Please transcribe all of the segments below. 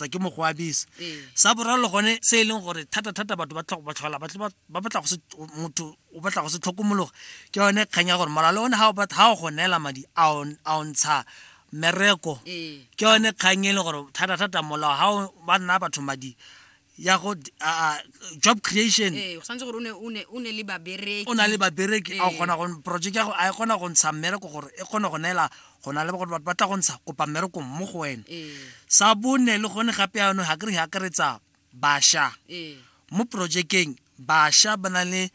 tota ke mo go abisa ee. sa boraro le gone se e leng gore thata-thata batho ba tlhogo ba tlhola ba batla motho o batla go se tlhokomologa ke yone kgang ya gore moralo one ga o go neela madi a o ntsha mereko ee. ke yone kgang e leng gore thata-thata molao ga o ba nna batho madi ya go job creation ee, o na le babereki a kgona go project ya go a e kgona go ntsha mmereko gore e kgone go neela go na le gore batho ba tla go ntsha kopa mmereko mo go wena sa bone le gone gape yano ga kere ga akaretsa basha mo projekeng basha ba na le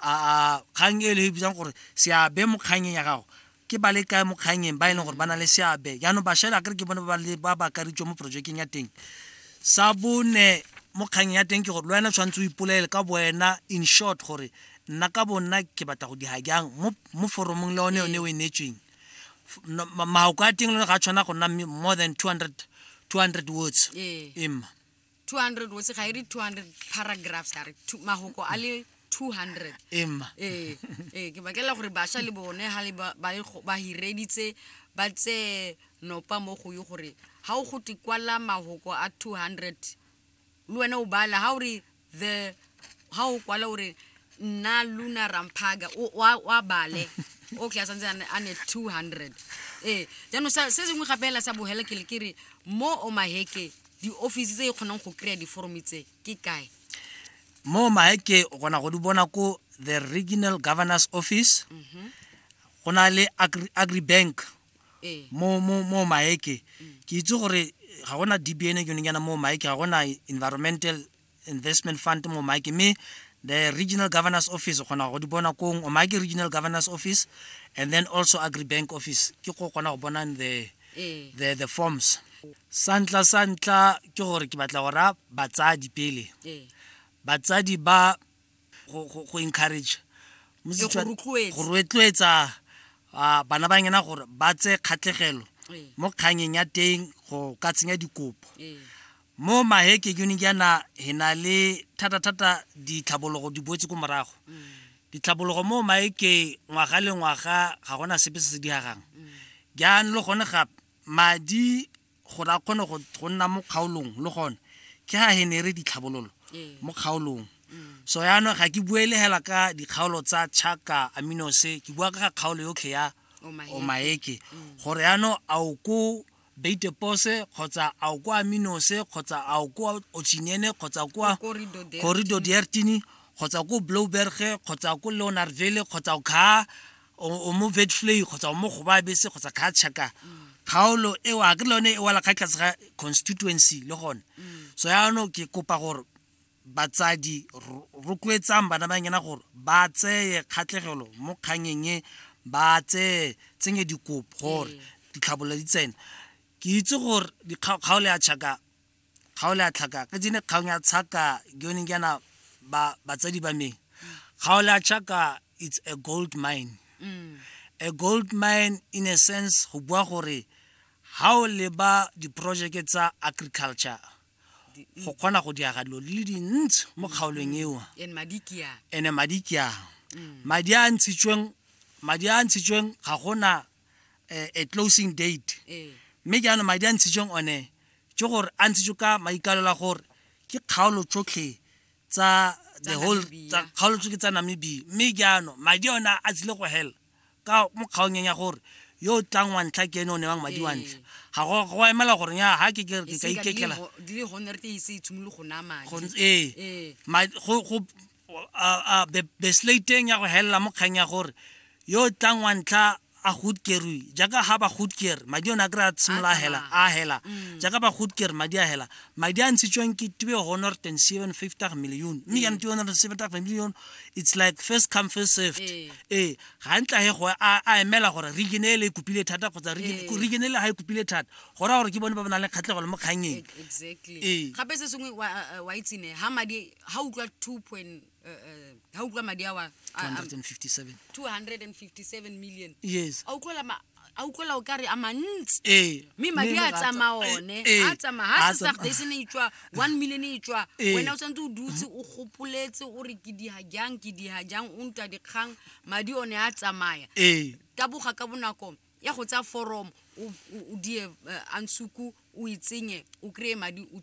a kgang e le e bitsang gore seabe mo kgangeng ya gago ke ba le kae mo kgangeng ba e leng gore ba na le seabe jaanong basha e le akere ke bone ba ba akaritswe mo projekeng ya teng sa bone mo kgangeng ya teng ke gore le wena tshwanetse o ipolele ka bo wena in short gore nna ka bonna ke batla go di jang mo foromong le one yone o e neetsweng maoko a teng le ga tshwana go nna more than 200 200 words ee. emma 200 words ga e re 200 paragraphs a re mahoko a le 200 emma ee ee ke bakela gore basha le bone ha le ba ba hireditse ba tse nopa mo go yo gore ha o go tikwala mahoko a 200 Le wena o bala ha o re the ha o kwala o re nna luna ramphaga o wa- wa bale okay a santse a ne- a ne 200 ee jaanong sa- se sengwe gape hela sa bogela ke le ke re mo o maheke di-office tse e kgonang go kry-a diforome tse ke kae mo maeke o kgona go di bona ko the regional governors office go na le Agri- agribank mo mo mo maeke ke itse gore ga gona dbn ke yone yana mo maeke ga gona environmental investment fund mo maeke mme the regional governors office o kgona go di bona kong o maake regional governors office and then also agri bank office ke go kgona go bona the eh. the the forms santla santla ke gore ke batla go ra batsadi pele eh. batsadi ba go encourage go rotloetsa bana ba ngena gore ba tse kgatlhegelo ee. mo kganyeng ya teng go ka tsenya dikopo ee. mo maheke jone jaana he na le thata-thata ditlhabologo di boetse ko morago mm. ditlhabologo mo maeke ngwaga le ngwaga ga gona sepe se se diagang mm. jaanong le gone gape madi gore a kgone go go nna mo kgaolong le gone ke ga henere ditlhabololo Ee. mo kgaolong so yaanong ga ke bue le hela ka dikgaolo tsa chaka aminose ke bua ka ga kgaolo yotlhe ya Omaheke. omaeke gore yaanong a o ko beitepose kgotsa a o ko aminose kgotsa a o ko ochinyene kgotsa o kwa Ko Corridor Dertini. corridor diertini kgotsa ko blowberge kgotsa ko leonarville kgotsa o khaa o mo vetflay kgotsa o mo goba bese kgotsa khatšhaka kgaolo eo a ke le yone e wala kga tlase ga constituency le gone so yaanong ke kopa gore batsadi rotloetsang bana ba ngena gore ba tseye kgatlhegelo mo kganyeng e ba tseye tsenye dikopo gore ee. ditlhabolo di tsena ke itse gore kgaolo ya tšhaka ga o le a tlhaka ke tsene kgang ya tshaka ke yone ke yana ba batsadi ba me ga o le a tshaka it's a gold mine mm. a gold mine in a sense go bua gore ha o leba diprojeke tsa agriculture go kgona go diaga dilo le dintsi mo kgaolong mm. eo ene madi ke a mm. madi a ntshitsweng madi a ntshitsweng ga gona eh, a closing date eh. mme jaanong madi a ntshitsweng one ke gore a ntshitswe ka maikalela gore ke kgaolo tsotlhe tsa the whole kgaolo tsotlhe tsa namibia mme jaanong madi ona a tsile go hela ka mo kgaonyeng ya gore yo o tlang wa ntlha ke ene o newang madi wa ntlha ga go emela gore ya ga ke ka ikekela ee a beslateng ya go helela mo kgang ya gore yo o tlang wa ntlha a gutkerui jaaka ga ba gutker madi one a kry a tshimolola hela a hela mm. jaaka ba gutker madi a hela madi a ntshitsweng ke tube honor ten seven fifty million mme yane tube honor seven fifty million it's like first come first served ee eh, ga ntla he go a emela gore region e le e kopile thata kgotsa region e le ga e kopile thata go raya gore ke bone ba ba nang le kgatlhego le mo kgangeng ee gape se sengwe wa itsene ga madi ha utlwa 2 point uh, uh, ha utlwa madi awa a- a- 257 257 million yes a utlwela ma- a utlwela o kare a mantsi ee mme madi a tsamaya one a tsamaya ha sesagdase ne itswa one million e itswa Ee. wena o tshwanetse o dutse o gopoletse o re ke diha jang ke diha jang o ntwa dikgang madi one a tsamaya ee taboga ka bonako ya go tsaya foromo o- o o die eh, ansuku o e tsenye o kry-e madi o tswe